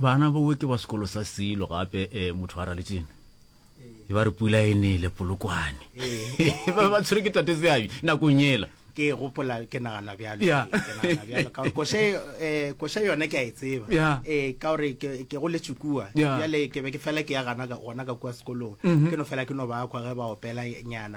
bana bowe ke ba sekolo sa silo gape um motho a raletšene e ba re pula e nele polokwane eh. ba ba tshwere ke tate seabi nakong ela ke gopola ke nagana bjalo kose eh, yone ke a e tseba ee ka gore ke go letsukua bjale ke be ke fela ke ya gana gona ka kua sekolong mhm. ke no fela ke no ba kwa ge ba opela nyana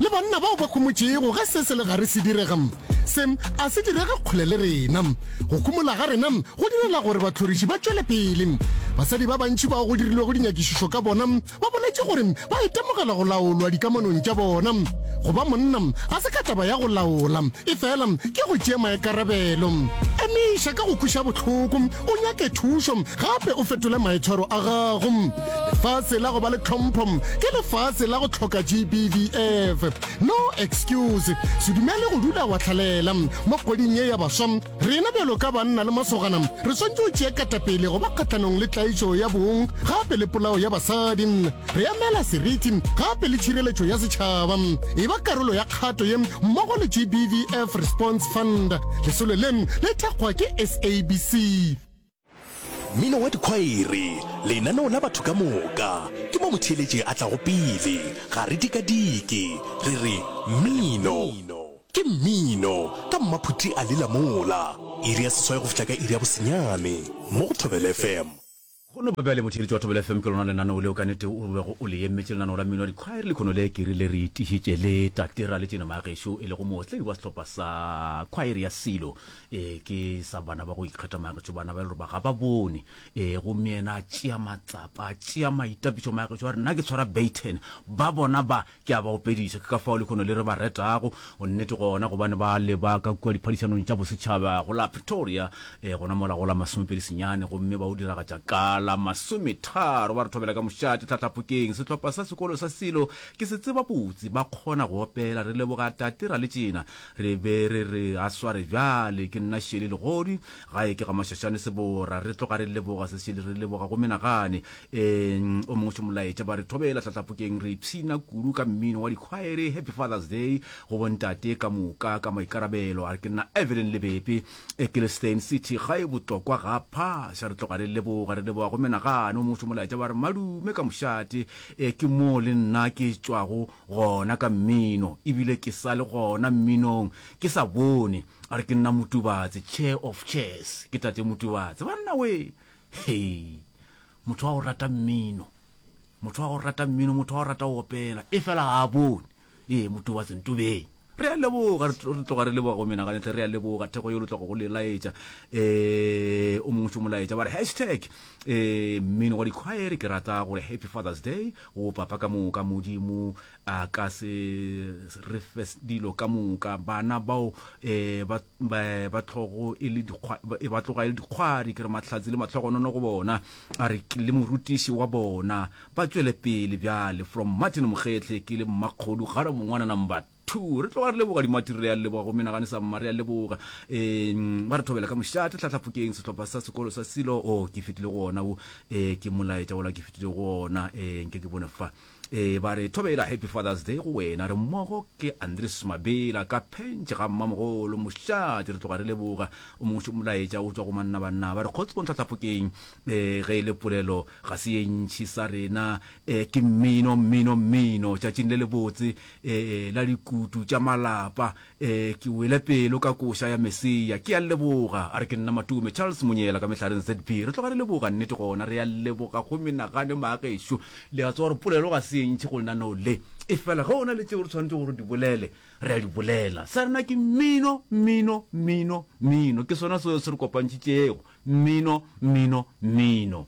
Le banna bao ba khumotšego, ge se se le gare se direga, se a se direge kgole le rena. Go khumola ga rena go direla gore bahloriši ba tšwele pele. Basadi ba bantši bao go dirilwego dinyakišišo ka bona ba boletše gore ba itemogela go laolwa dikamanong tša bona. Go ba monna ga se ka taba ya go laola, efela ke go tšea maikarabelo. Emiša ka go kweša bohloko, o nyake thušo gape o fetole maitshwaro a gago. Lefase la go ba le tlhompho ke lefase la go tlhoka GBVF. No excuse. Se dumele go dula wa tlhalela. Mo kgweding ye ya baswa, rena bjalo ka banna le masogana re swantše go tšea katapele go ba kgahlanong le tlaišo ya bong gape le polao ya basadi. Re emela seriti gape le tšhireletšo ya setšhaba. E ba karolo ya kgato ye mmogo le GBVF Response Fund. Lesolo le le thekgwa ke SABC. Mmino wa dikhwaere, lenaneo la batho ka moka, ke mo motheeletši a tlago pele. Ga re dikadike, re re, Mmino! Ke mmino! Ka mmaphuti a lela mola. Iri ya seswai go fihla ka iri ya bosenyane, mo go Thobela FM. Go no ba bjale, motheeletši wa Thobela FM ke lona lenaneo leo ka nete o bego o le emetše, lenaneo la mmino wa dikhwaere. Lekhono le ke rile re itišitše le Tatera Letšeno Magešo, e lego mootledi wa sehlopha sa khwaere ya Silo, ee ke sa bana ba go ikgetha magetšo bana ba e le ba ga ba bone ee gomme yena a tšea matsapa a tšea maitapišo magetšo a re nna ke tshwara baton ba bona ba ke a ba opediša ke ka fao le kgono le re ba retago go nnete gona gobane ba le ba ka kua diphadišanong tša bosetšhaba go la pretoria ee gona mola go la masomepedi senyane gomme ba o diragatša ka la masometharo ba re thobela ka mošate tlhatlhapokeng sehlopha sa sekolo sa silo ke se tseba botse ba kgona go opela re leboga tate ra le tšena Re be re re a sware bjale, ke nna Shirley Legodi, gae ke ga Mashashane Sebora. Re tloga re leboga se Shirley, re leboga go menagane. Ee-ng, o mongwe se molaetša, ba re thobela hlahlapokeng, re ipshina kudu ka mmino wa dikhwaere, Happy Father's Day go bontate ka moka ka maikarabelo. A re ke nna Evelyn Lebepe, Ecclestane City, gae Botlokwa ga Phaša. Re tloga re leboga, re leboga go menagane, o mongwe se molaetša, ba re madume ka mošate, ee ke moo le nna ke tšwago. Gona ka mmino, e bile ke sa le gona mminong, ke sa bone. A re ke nna Motubatse, Chair of Chairs, ke Tate Motubatse. Banna wee! Hei! Motho wa go rata mmino, motho wa go rata mmino, motho wa go rata go opela, efela ga a bone. Ee, Motubatse, ntobeng. Re a leboga, re tloga re leboga go menagane tle, re a leboga thekgo yo lo tloga go le laetša eh o mongwe tšo molaetša ba re hashtag eh mmino wa dikhwaere ke rata gore happy father's day go papa ka moka modimo a ka se re fe dilo ka moka bana bao eh ba ba tlogo e le dikgwa e ba tloga e le dikgwari ke re mahlatsi le matlhogonono go bona a re le morutiši wa bona Ba tšwele pele bjale. From Martin Mokgehle ke le mmakgodu kgale mongwana number two. Re tloga re leboga dimatiri re a leboga go menagane sa mma re a leboga um ba re thobela ka mošate tlhatlhapokeng sehlopha sa sekolo sa silo o oh, ke fetile go ona wo um ke molaetša wola ke fetile go ona um nke ke bone fa um ba re thobela happy fathers day go wena re mmogo ke andres mabela ka phentšhe ga mmamogolo mošate re tloga re leboga o mongwe molaetša o tswa go mannabanna ba re kgotsong tlhatlhapokeng um ge e le polelo Ga se ye ntši sa rena, eh, ke mmino, mmino, mmino, tšatšing le lebotse, eh, eh, la dikutu tša malapa, eh, ke wele pelo ka koša ya Mesia, ke a leboga, a re ke nna Matume, Charles Monyela ka mehlareng ZB, re tloga re leboga, nnete gona, re a leboga go menagane maagešo, le a tseba gore polelo ga se ye ntši go lenaneo le, efela ge o na le tšeo re tshwanetšego gore di bolele, Re a di bolela. Sa rena ke mmino, mmino, mmino, mmino. Ke sona seo se re kopantšitšego. Mmino, mmino, mmino.